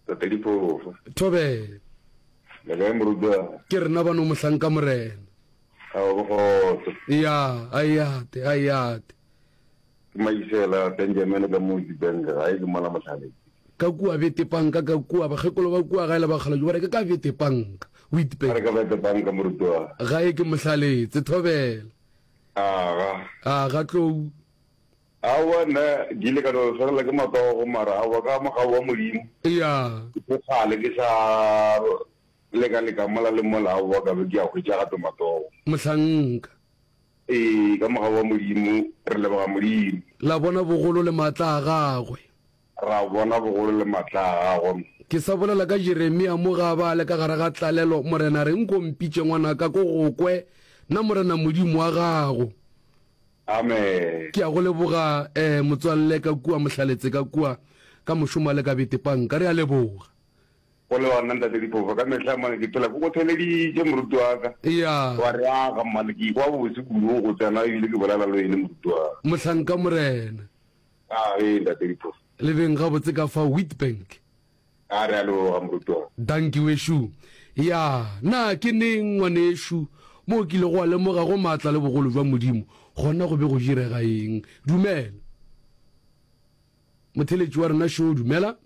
Tatediphofo. Thobela. Le kae morutwana? Ke rena bano mohlanka morena. A o bogotse. Ya, a yate, a yate. Ke maisela Benjamin ka mo di bank ga e ke mona mohlale. Ka kua bete panka ka kua bagekolo ba kua ga e le ba kgala jubare ke ka bete panka. O itpe. Ka ka bete panka morutwana. Ga e ke mohlaletse thobela. A ga. A ga tlou. Aowa, nna ke ile ka no swarela ke matsogo, mara aowa, ka mogau wa Modimo, Eya. ke tlo kgale ke sa leka-leka mola le mola, aowa, ka be ke a hwetša gape matsogo. Mohlanka. Ee, ka mogau wa Modimo, re leboga Modimo. La bona bogolo le maatla a Gagwe. Ra bona bogolo le matla a gagwe. Ke sa bolela ka Jeremia mo ga ba le ka gare ga tlalelo, Morena, reng nko mpitše ngwanaka ko go kwe, na Morena Modimo wa gago. Amen. Ke a go leboga, eh, motswalle, ka kua, mohlaletse ka kua, ka mošomo a le ka bete panka. Re a leboga. Go le gona, Ntate Diphofo, ka mehla mone ke phela ke go theleditše, moruti wa ka. Eya. Wa re aga, mma, le ke ikwa bobose kudu go tsena ebile ke bolela le wene, moruti wa ka. Mohlanka, Morena. A re, Ntate Diphofo. Le beng gabotse ka fa Witbank. A re, A leboga, Morutwaa. Danki, wešo. Ya, na ke neng, ngwanešu, mo o kilego wa lemoga go maatla le bogolo bja Modimo, gona go be go direga eng? Dumela. Motheletši wa rena šo, dumela.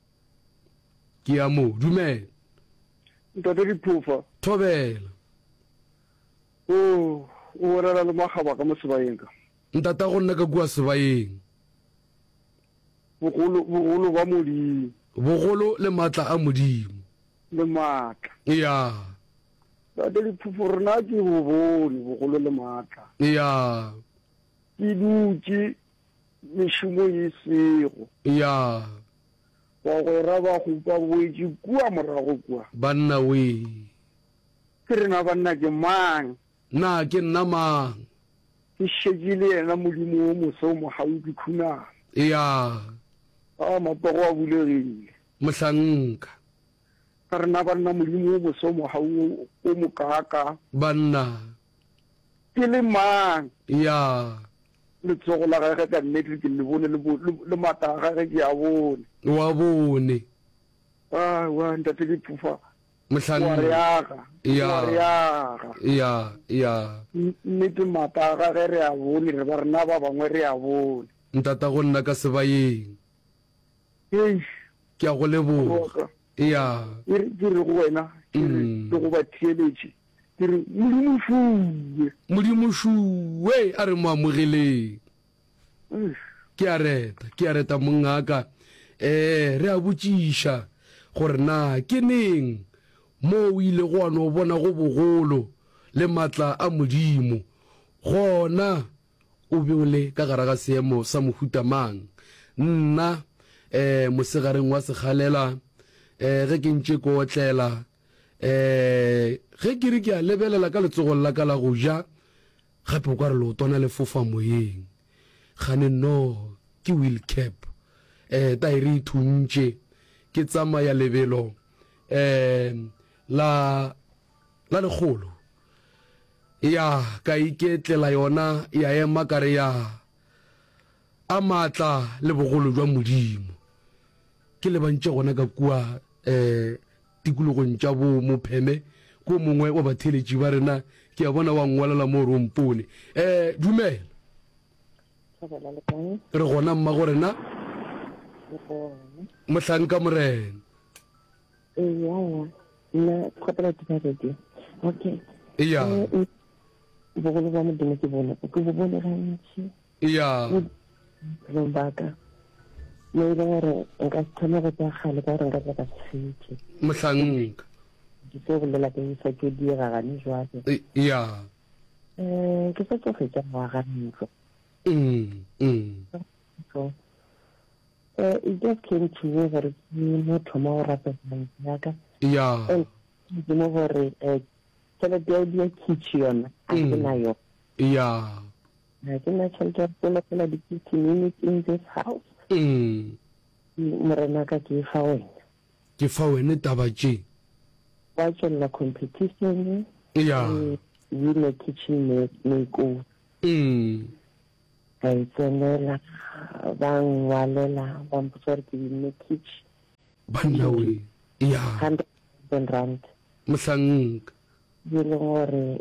Ke ya moo. Dumela. Ntate Diphofa. Thobela. O, o bolela le makgaba ka mo sebayeng ka. Ntata go nna ka kua sebaeng. Bogolo, bogolo ba Modimo. Bogolo le maatla a Modimo. Le maatla. Ya. Tate Diphopho, rena ke bo bone bogolo le maatla. Ya. Ke dutše mešomo e sego. Ya. Bagwera ba hupa boetše kua morago kua. Banna wee. Ke rena banna ke mang? Na ke nna mang? Ke šetše le yena Modimo wo mose o mogau, ke khuname. Eya. A, matsogo a bulegile. Mohlanka. Ka re, Na banna Modimo wo mose o mogau wo o mokaakaa? Banna. Ke le mang? Eya. Letsogo la Gage ka nnete ke le bone, le, le, le maatla a Gage ke a bone. O a bone. Aowa, Ntate, ke phofa, Mohlanne. O a re aga. Yeah. O a re aga. Yeah, yeah. Nnete maaka a gage re a bone, re ba rena ba bangwe re a bone. Ntata go nna ka sebayeng. Eish. Ke a go leboga. Yeah. Ke re, ke re go wena, ke re, ke go ba theeletše, ke re, Modimo šuwe. Modimo šuwe, a re mo amogeleng. ke a reta ke a reta mongaka eh re a botšiša gore na ke neng mo o ile go no bona go bogolo le matla a modimo gona o be o le ka gara ga seemo sa mohuta mang nna eh mosegareng wa segalela eh ge ke ntše ko otlela um ge ke re ke a lebelela ka letsogong la ka la go ja gape o ka re leotwana le fofa moyeng gane nnoo ke wheel cap um taere e thuntše ke tsamaya lebelo um la la lekgolo ya ka iketlela yona ya ema ka re ya A maatla le bogolo jwa Modimo! Ke lebantše gona ka kua eh, tikologong tša bo Mopheme, ko mongwe wa batheeletši ba rena, ke a bona wa ngwalela mo gore o mpone. Eh, dumela. Thabela le kae? Re gona mmago rena. Le gona. Mohlanka Morena. Eya, nna kgopela ke baredi. Okay. Eya. Eh, eh, bogolo bwa Modimo ke bone, ke bo bone gantši. Eya. Bophelong ba ka, ne e le gore nka se kgone go tsaya kgale ka gore nka tla ka setswe. Mohlanka. Ke se bolela ke sa tšo diega gane jwale. Eya. Um, ke sa tšo fetša ngwaga ntlo. Ntlo. Uh, it just came to me gore ke mo thoma go rata tšhelete ya ka. Eya. And ke mo gore, um, tšhelete ya kitšhi yona, a ke na yona. Eya. ga ke na tšhelete ya go kologela di-fifteen minutes in this house Mm. Ke- morena ka ke e fa wena ke fa wene taba tše wa tšwelela competition ya re wine kitchen ma- makeover Mm. ka e tsenela ba ngwalela ba mpotsa gore ke winne kitchen banna we ya hundred thousand rand mohlanka e leng gore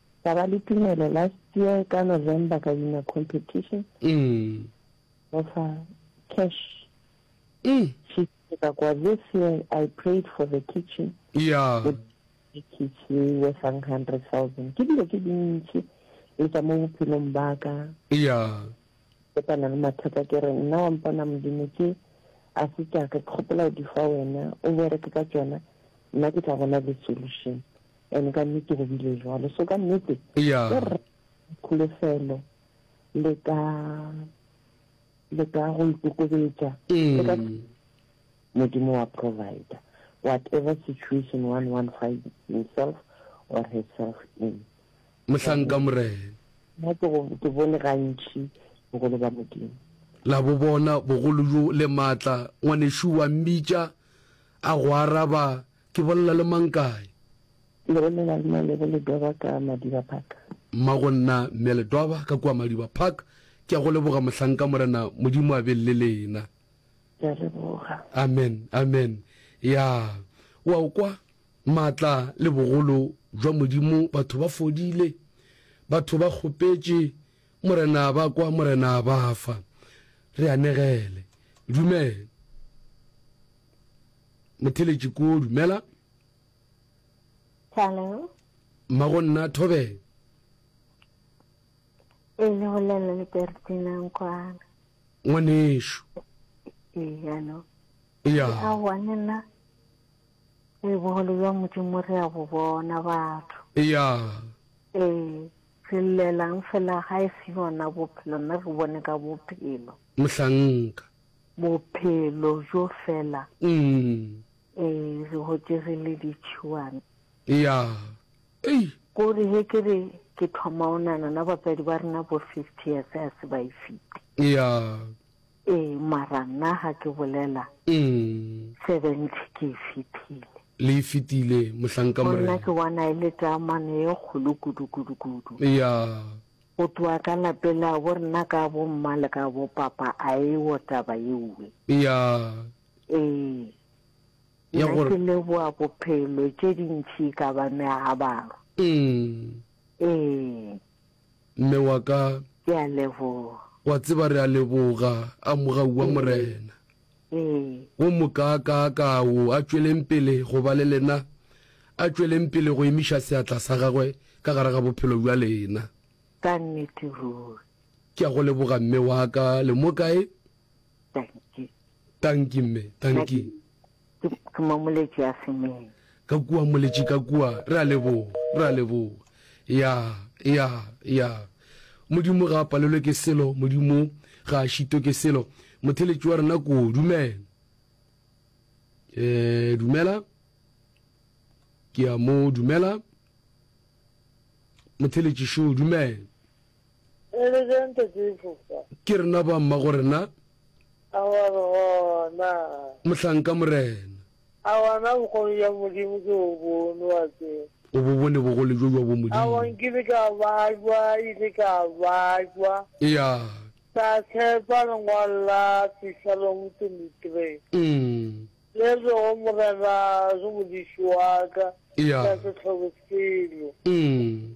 Ka ba le tumelo last year ka November ka wina competition. Go fa cash. She ka kwa this year I prayed for the kitchen. Yeah. The kitchen worth 100,000. Ke dilo ke dintsi le tsa mo bophelong ba ka. Yeah. Ke tana le mathata ke re nna wa mpona modimo ke a se tša ka ke kgopela o di fa wena o bereke ka tsona nna ke tla bona le solution. And ka nnete go bile jwalo. So ka nnete ya o re kholofelo le ka le ka go ikokobetša le ka mm. modimo wa provider whatever situation one one find himself or herself in mohlanka morena nna ke go- ke bone gantši bogolo ba modimo la bo bona bogolo bjo le maatla ngwanešu wa mmitša a go araba Ke bolela le mang kae? Le bolela le Male go Ledwaba ka Madiba Park. Mma go nna Mme Ledwaba ka kua Madiba Park. Ke a go leboga mohlanka Morena Modimo a be le lena. Ke a leboga. Amen. Amen. Ya. O a o kwa? Maatla le bogolo jwa Modimo batho ba fodile. Batho ba kgopetše Morena ba kwa Morena a ba fa. Re anegele. Dumela. Motheletši koo, dumela. Hello. Mma go nna Thobela. E le bolela le Bertinang kwana. Ngwanešu. Eya no. Eya. A wane na e bogolo jwa modimo re a bo bona batho. Eya. Ee. Re llelang fela ga e se yona bophelo nna re bone ka bophelo. Mohlanka. Bophelo bjo fela. Ee, re hotše re le ditšhiwana. Ya. Ei! Ko re he ke re ke thoma o nana na batswadi ba rena bo fifty years ha se ba e fite. Ya. Ee, mara nna ha ke bolela seventy ke e fitile. Le e fitile, Mohlanka Morena. Gona ke bona e le tamane e kgolo kudu-kudu-kudu. Ya. Go tloga ka lapela bo rena ka bo mma le ka bo papa a ewo taba yewe. Eya. Ee. Ya Nna gore. ke leboa bophelo tše dintši ka ba meagabaro. Umm. Ee. Mme wa ka. Ke a leboga. Wa tseba re a leboga, amoga ua Morena. Ee. Wo mokaakaa-kaa wo, a tšweleng pele go ba le lena, a tšweleng pele go emiša seatla sa Gagwe ka gare ga bophelo bja lena. Ka nnete ruri. Ke a go leboga, mme wa ka. Le mo kae? Tanki. Tanki, mme. Tanki. Ke, ke, ke momoletši a semeng. Ka kua, moletši, ka kua. Re a leboga. Re a leboga. Ya, ya, ya. Modimo ga a palelwe ke selo. Modimo ga a šitwe ke selo. Motheletši wa rena ko, dumela. E, dumela. Ke a mo dumela. Motheletši šo, dumela. Re le bjang Tate Efofa? Ke rena ba mmagorena. A wa re gona. Mohlanka Morena. A wa na bokgoni bja Modimo ke bo bone wa tseba? O bo bone bogole bjo bja bomodimo? A wa nkile ka bajwa, ile ka bajwa. Eya. Ka tshepa lengwalo la Psalom 23. Umm. Le rego Morena ke modiši wa ka. Eya. Ka se tlhobe selo. Umm.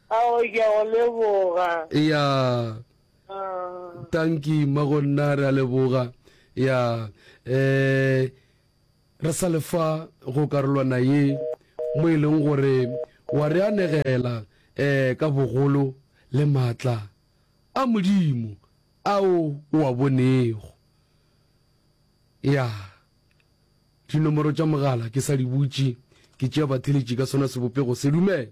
Aowe ke a go leboga. Eya. Ahh. Tanki mma go nna re a leboga. Ya eh re sa le fa go karolwana ye mo e leng gore wa re anegela eh ka bogolo le maatla a Modimo ao o a bonego. Ya dinomoro tša mogala ke sa di butše ke tšea batheletši ka sona sebopego se. Dumela.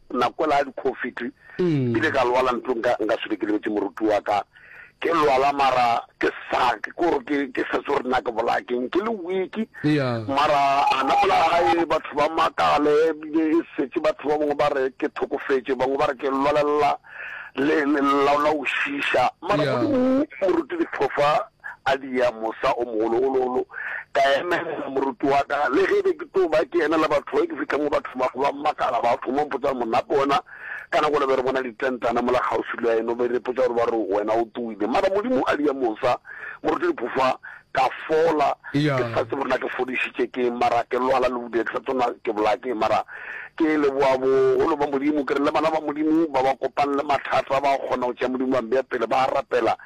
Nako ela ya di-Covid kile ka lwala ntlong nka nka swile ke lebetse moruti wa ka ke lwala mara ke sa ke gore ke ke sa tsore na ke bola ke ke le week mara ana mola hae batho ba makale bile e setse batho ba bangwe ba re ke thokofetse bangwe ba re ke lwalela le la la ushisha mara moruti di thofa A dia mosa o mogologololo, ka emelela moruti wa ka. Le ge be ke tlo ba ke emela batho, ge ke fihla mo ba thoma go ba makala, ba thoma go mpotsa gore, Monna Pona? Ka nako yela be re bona ditentana mola kgauswi le eno, be re ipotsa gore ba re wena o tsoile. Mara Modimo a dia mosa, Moruti Lephofa, ka fola. Ke sa tsebe gore na ke fodišitše ke'ng, mara ke lwala le bodile, ke sa tsebe na ke bolaya ke'ng. Mara ke leboga bogolo ba Modimo, ke re le bana ba Modimo ba ba kopane le mathata ba kgona go tšea Modimo ba mbeya pele, ba rapela.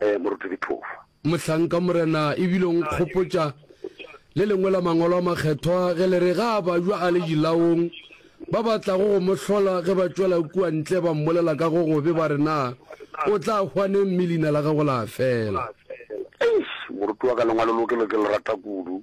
Ee, Moruti Dithofa. Mohlanka Morena ebile o nkgopotša le lengwe la Mangwalo a Makgethwa ge le re ga a bajwa a le dilaong, ba ba tlago go mo hlola ge ba tšwela kua ntle ba mmolela ka go gobe ba re na o tla hwa neng mme leina la gagwe la fela. Eish! Moruti wa ka lengwalo lo ke le ke le rata kudu.